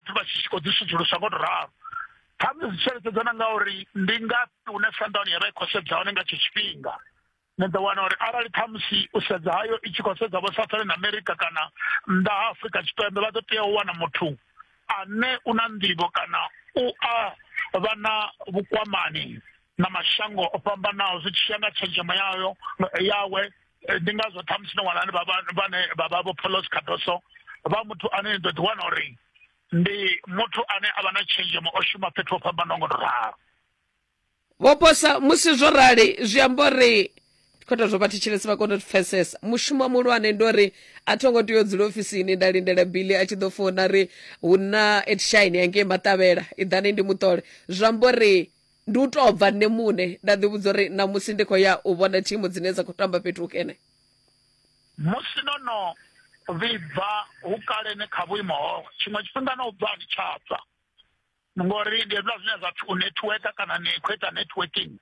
dzi vha tshi khou dzi sudzulusa ngo to ralo khamusi zwi tsheletshedza na ngauri ndi ngafhi hune sandown ya vha i khou sedza hone nga tsho tshifhinga ni ḓo wana uri arali khamusi u sedza hayo i tshi khou sedza vho southern america kana nnḓa ha afrika tshipembe vha ḓo tea u wana muthu ane u na nḓivho kana u a vha na vhukwamani na mashango o fhambanaho zwi tshi ya nga tshenzhemo yayo yawe eh, ndi ngazwo ṱhamusi no wana vhane vha vha vho polos cardoso vha muthu ane ni ḓo ḓi wana uri ndi muthu ane a vha na tshenzhemo o shuma fhethu ho fhambanaho ngo to ralo vhoposa musi zwo rali zwi amba uri khoto zwo vha thetshelesi vha kona u pfesesa mushumo muhulwane ndi uri a tho ngo tea u dzula ofisini nda lindela bili a tshi ḓo fona ri hu na edshine yangei maṱavhela iḓani ndi muṱole zwi amba uri ndi u tou bva nṋe muṋe nda ḓivhudza uri ṋamusi ndi khou ya u vhona thimu dzine dza khou tamba fhethu hukene musi no no vhibva hukalene kha vhuimo ho tshiṅwe tshifhinga no bva ni tsha bva ngori ndi hezwiḽa zwine zwa pfi u networka kana ni khou ita networking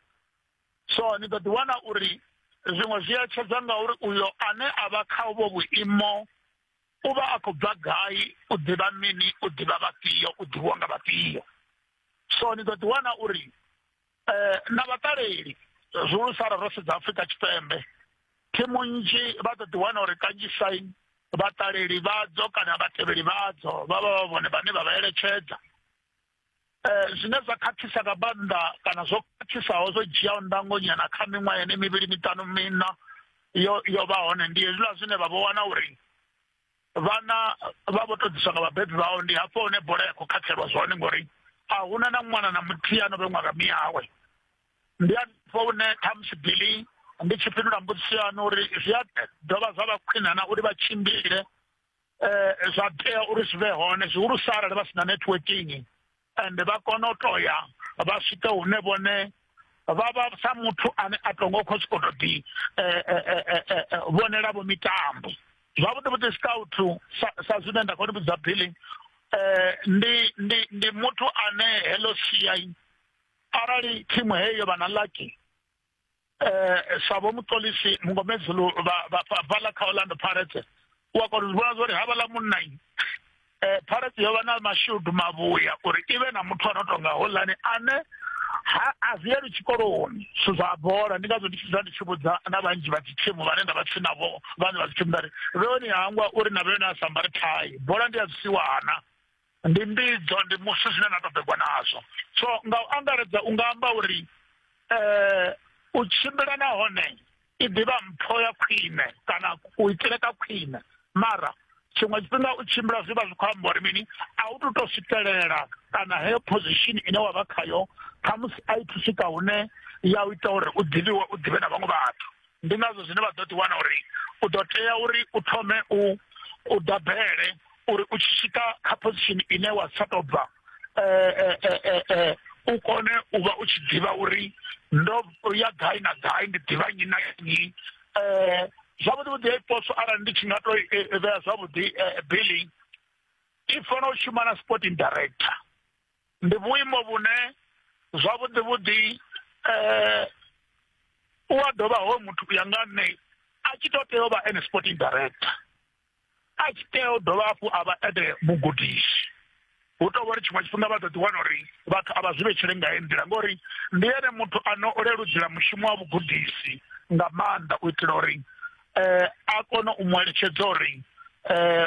so ni ḓo ḓiwana uri zwiṅwe zwi etshedza ngauri uyo ane a vha kha uvho vhuimo u vha a khou bva gai u ḓivha mini u ḓivha vhafhio u ḓivhiwa nga vhafhio so ni ḓo ḓiwana uri um na vhaṱaleli zwihulusa ra ro sedza afrika tshipembe thimu nnzhi vha ḓo ḓiwana uri kanzhisa vhaṱaleli vhadzo kana vhatevheli vhadzo vha vha vha vhone vhane vha vha eletshedza Eh, zwine zwa khakhisa nga maanḓa kana zwo khakhisaho zwo dzhiaho ndangonyana kha miṅwaha yene mivhili miṱanu mina yo yo vha hone ndi hezwiḽa zwine vha vho wana uri vhana vha vho to ḓiswa nga vhabebi vhao ndi hafho hune bola ya khou khakhelwa zwone ngori a huna na ṅwana na muthihi ano vhe ṅwaga miyawe ndi afho hune khamusi bili ndi tshi fhindula mbudziso yanu uri zwi a dovha zwa vha khwinana uri vha tshimbile eh, zwa tea uri zwi vhe hone zwihulusa arali vha si na networking ende vha kona u to ya vha swike hune vhone vha vha sa muthu ane a to ngo khou sokou to ḓi eh, eh, eh, vhonela vho mitambo zwavhuḓi vhuḓi scout sa zwine nda khou ni vhudza billy um ndi ndi ndi muthu ane heḽo siai arali thimu heyo vha na lucky eh sabo muṱolisi mungomedzulu vhaḽa kha orlando pirates u a kona u vhona zwori ha vhaḽa munnai eh pirates yo vha na mashudu mavhuya uri i vhe na muthu a no tonga holani ane ha a ziyeli tshikoloni zwithu zwa bola ndi ngazwo ndi tshi zwa ndi tshi vhudza na vhanzhi vha dzithimu vhane nda vha tsini navho vhane vha dzithimu ndari vheoni hangwa uri na vheoni a sambare thai bola ndi a zwisiwana Ndi mbidzo, ndi musi zwine na ṱoḓegwa nazwo. So nga u angaredza u nga amba uri eh, u tshimbila nahone i ḓivha mpho ya khwine kana u itele ka khwine mara tshiṅwe tshifhinga u tshimbila zwi vha zwi khou amba uri mini a u tu to swikelela kana heyo position ine wa vha khayo khamusi a i thu swika hune ya u ita uri u ḓivhiwe u ḓivhe na vhaṅwe vhathu ndi ngazwo zwine vha ḓo ḓiwana uri u ḓo tea uri u thome u u dabele uri u tshi swika kha position ine wa sa tou bva eh, eh, eh, u kone u vha u tshi ḓivha uri ndo ya gai na gai ndi ḓivha nnyi na nnyi um zwavhuḓi vhuḓi ya iposo arali ndi tshi nga to vhea zwavhuḓi billing i fanela u shuma na sporting director ndi vhuimo vhune zwavhuḓi vhuḓi eh u a dovha ho muthu u ya nga nṋe a tshi to tea u vha ene sporting director a tshi tea u dovha hafhu a vha ene mugudisi hu tou vhori tshiṅwe tshifhinga vha ḓo ḓi wana uri vhathu a vha zwi vhetshele nga he nḓila ngori ndi ene muthu ano o leludzela mushumo wa vhugudisi nga maanḓa u itela uri um a kone u mu eletshedza uri um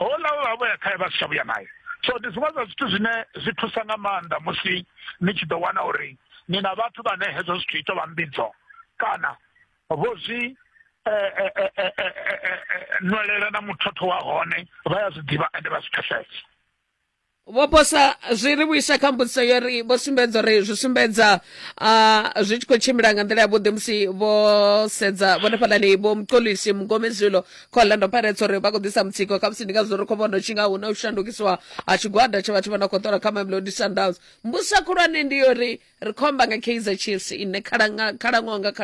houḽa we vha vho ya khae vha si tsha vhuya naye so ndi zwiṅwe zwa zwithu zwine zwi thusa nga maanḓa musi ni tshi ḓo wana uri ni na vhathu vhane hezwo zwithu ito vha mbidzo kana vho zwi eh, eh, eh, nwelela na muthotho wa hone vha ya zwi ḓivha ende vha zwi pfesesa vho posa zwi ri vhuisa kha mbudziso yo ri vho sumbedza uri zwi sumbedza uh, zwi tshi khou tshimbila nga nḓila yavhuḓi musi vho sedza vhone fhalani vho mukolisi mugomezwilo kha orlando pirates uri vha khou ḓisa mutsiko kha musi ndi ngazwo ri khou vhona u tshi nga hu na u shandukisiwa ha tshigwada tsha vhathu vha na khou ṱola kha mamelodi sundowns mbusa khulwane ndi yo ri ri khomba nga kaizer chiefs ine khalaṅwaha nga